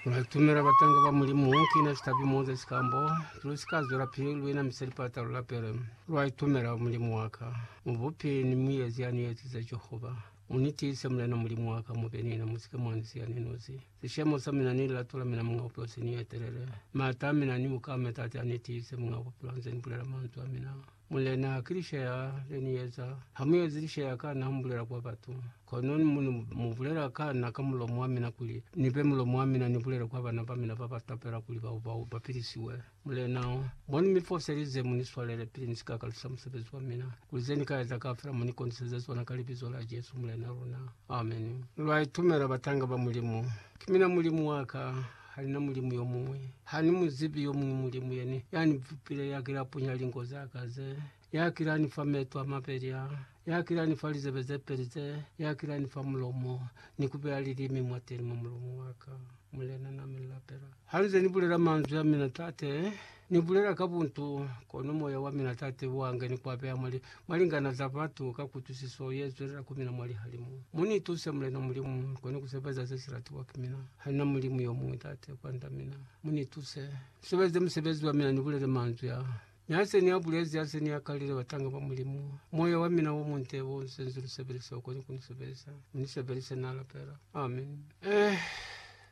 Lwa itumela batanga ba Mulimu, ki na sitapi mo za sikambo. Lu si ka zwela pili lu ina misa lipata, lu lapele. Lwa itumela, Mulimu wa ka, Mubupi ni Muezi ya ni ezize Jehova, mu ni tiise, Mulena Mulimu wa ka, mu be ni mina, mu si ke mwa ni siya ni nosi. Sishemo sa mina ni lilato la mina, Muñ'a Bupilo, si ni etelele. M'ata a mina ni bukame, Tate, a ni tiise, Muñ'a Bupilo, a nze ni bulela manzwi a mina. Mulena, ki lishaya le ni eza. Ha mu ezi lishaya ka na, ha mu bulela kwa batu. Kono ni mu, mu bulela ka na ka mulomo wa mina kuli ni be mulomo wa mina ni bulele kwa bana ba mina ba ba tapela kuli bao, bao ba pilisiwe. Mulena, mo ni mi foselize, mu ni swalele pili ni si ka ka lusa musebezi wa mina, kuli ze ni ka eza kaufela mu ni koniseze zona ka Libizo la Jesu, Mulena luna. Ameni. Lwa itumela, batanga ba Mulimu. Ki mina Mulimu wa ka. Halina mulimu yomuñwi. Hani muzibi yomuñwi mulimu yene yani bupile yakila punya linko zaka ze, yakila ni fa meto a mabeli a, yakila ni fa lizebe zepeli ze, yakila ni fa mulomo, ni kubeya lilimi mwateni mwa mulomo waka. Mulena, na mi lapela. Hanize ni bulela manzwi amina, Tate, Ni bulela ka buntu, kono moya wa mina Tate wa nga ni ku apeha mwa li, mwa lingana za batu ka kutwisiso ye zwelela ku mina mwa lihalimu. Mu ni tuse, Mulena Mulimu, ni kone ku sebeza ze si latiwa ki mina. Ha nina Mulimu yo muñwi, Tate, kwand'a mina. Mu ni tuse, ni sebeze musebezi wa mina, ni bulele manzwi a. Mi ha se ni a bulezi, ha se ni a kalile batanga ba Mulimu, moya wa mina wo munte wo u senzwi lu sebelise, u kone ku ni sebeza. Mu ni sebelise, na lapela. Amen. Eh.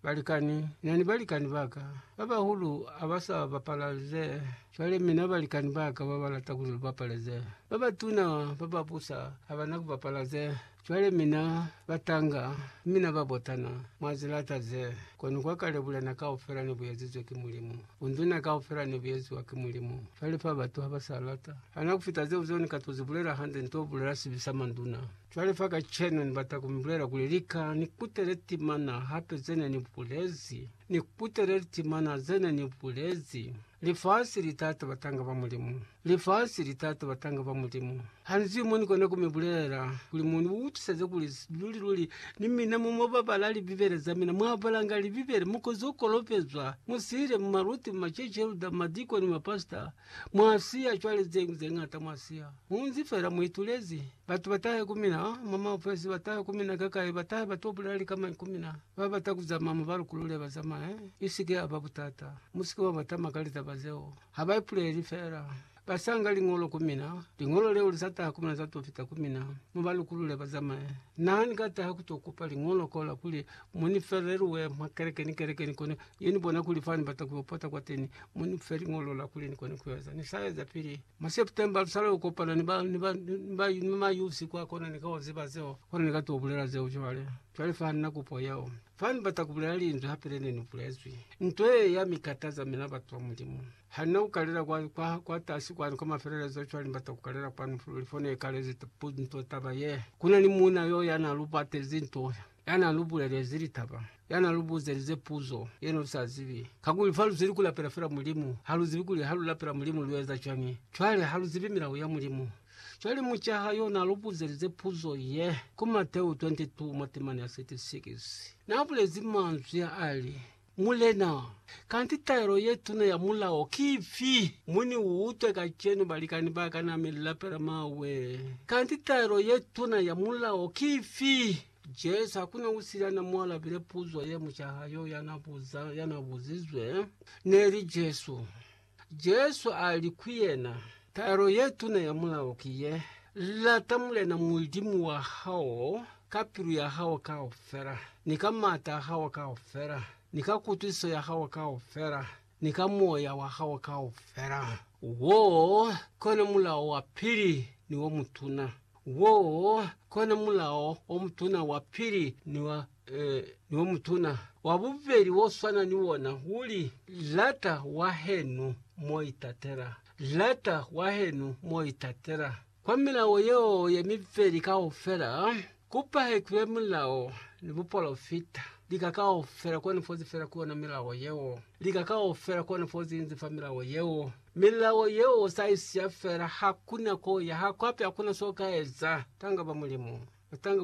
Balikani, Na ni balikani ba ka ba bahulu ha ba sa bapala ze. Cwale mina balikani ba ka ba ba lata kuli lu bapale ze. Ba batuna ba ba busa ha ba na ku bapala ze. Cwale mina batanga, mi na ba botana, mwa zi lata ze. Kono kwa kale bulena kaufela ne bu ezizwe ki Mulimu. Bunduna kaufela ne bu eziwa ki Mulimu. Cwale fa batu ha ba sa lata. Hana ku fita zeo zeo ni ka to zi bulela hande, ni to bulela sibi sa manduna. Cwale fa kacenu ni bata ku mi bulela kuli lika ni kutele timana hape ze ne ni bulezi. Ni kutele litimana ze ne ni bulezi. Lifasi li tata batanga ba Mulimu. Lifasi li tata batanga ba Mulimu. Ha ni zwi mo ni kona ku mi bulela, kuli mu ni utwiseze kuli luli-luli ni mina mo mwa babala Libibele za mina, mwa balanga Libibele, mu kozo kolopezwa, mu sile, mu maluti, mu macece, lu da madikoni, mapasita, Mwa siya cwale zeñwi ze ñata mwa siya. Mu nzi fela mu itulezi. Batu ba tahe ku mina, oh, mwa maofesi, ba tahe ku mina kakai, ba tahe ba to bulela likamai ku mina. Ba bata ku zamaya mu ba lukulule ba zamaye. I si ke ya ba butata. Mu si ke mwa ba tama ka litaba zeo. Ha ba ipuleli fela. Ba sa nga liñolo ku mina. Liñolo leo li sa taha ku mina za to fita ku mina. Mu ba lukulule ba zamaye. Na ni ka taha ku to kupa liñolo kola kuli Mu ni fe relue mwa keleke ni keleke, ni kone yo ni bona kuli fa ni bata ku yo pota kwa teni. Mu ni fe liñolo la kuli ni kone ku eza. Ni sa eza pili mwa September, lu sala yo kopana ni ba, ni ba, ni ba, ni ma youth kwa kona. Ni ka yo ziba zeo, kona ni ka to bulela zeo cwale. Cwale fa ni na kupo yeo, fa ni bata ku bulela linzwi hape le ne ni bulezwi. Nto ye ya mi kataza mina batu ba Mulimu. Ha ni na ku kalela kwa, kwa, kwa tasi kwani kwa mafelelezo, cwale ni bata ku kalela kwanu luli, fo ne kalezi nto taba ye. Ku na ni muuna yo ya na lu batezi nto ya n'a lu bulelezi litaba, ya n'a lu buzelize puzo ye ne lu sa zibi. Kakuli fa lu zweli ku lapela fela Mulimu, ha lu zibi kuli ha lu lapela Mulimu lu eza cwañi. Cwale ha lu zibi milao ya Mulimu. Cwale mucaha y'o n'a lu buzelize puzo ye, ku Mateu 22 mwa temana ya 36. N'a bulezi manzwi a li, Mulena, kanti taelo ye tuna ya mulao ki ifi? Mu ni utwe kacenu, balikani ba ka, na mi lapela mawe. Kanti taelo ye tuna ya mulao ki ifi? Jesu, hakuna usili ya na mu alabile puzo ye mucaha yo ya na buza, ya na buzizwe, neli Jesu. Jesu a li ku yena, Taelo ye tuna ya mulao ki ye, Lata Mulena Mulimu wa hao ka pilu ya hao kaufela, ni ka m'ata a hao kaufela, ni ka kutwisiso ya hao kaufela, ni ka moya wa hao kaufela. Wo kona mulao wa pili ni wo mutuna. Wo kona mulao o mutuna wa pili ni wa Ee, ni o mutuna. Wa bubeli wo swana ni wona uli, Lata wahenu mo itatela. Lata wahenu mo itatela. Kwa milao yeo ye mibeli kaufela, ku pahekilwe mulao ni bupolofita. Lika kaufela koni fozi fela ku yona milao yeo. Lika kaufela koni fozi inzi fa milao yeo. Milao yeo usa isiya fela, hakuna ko ya, ha kwapi hakuna so ka eza. Tanga ba Mulimu. Tanga ba.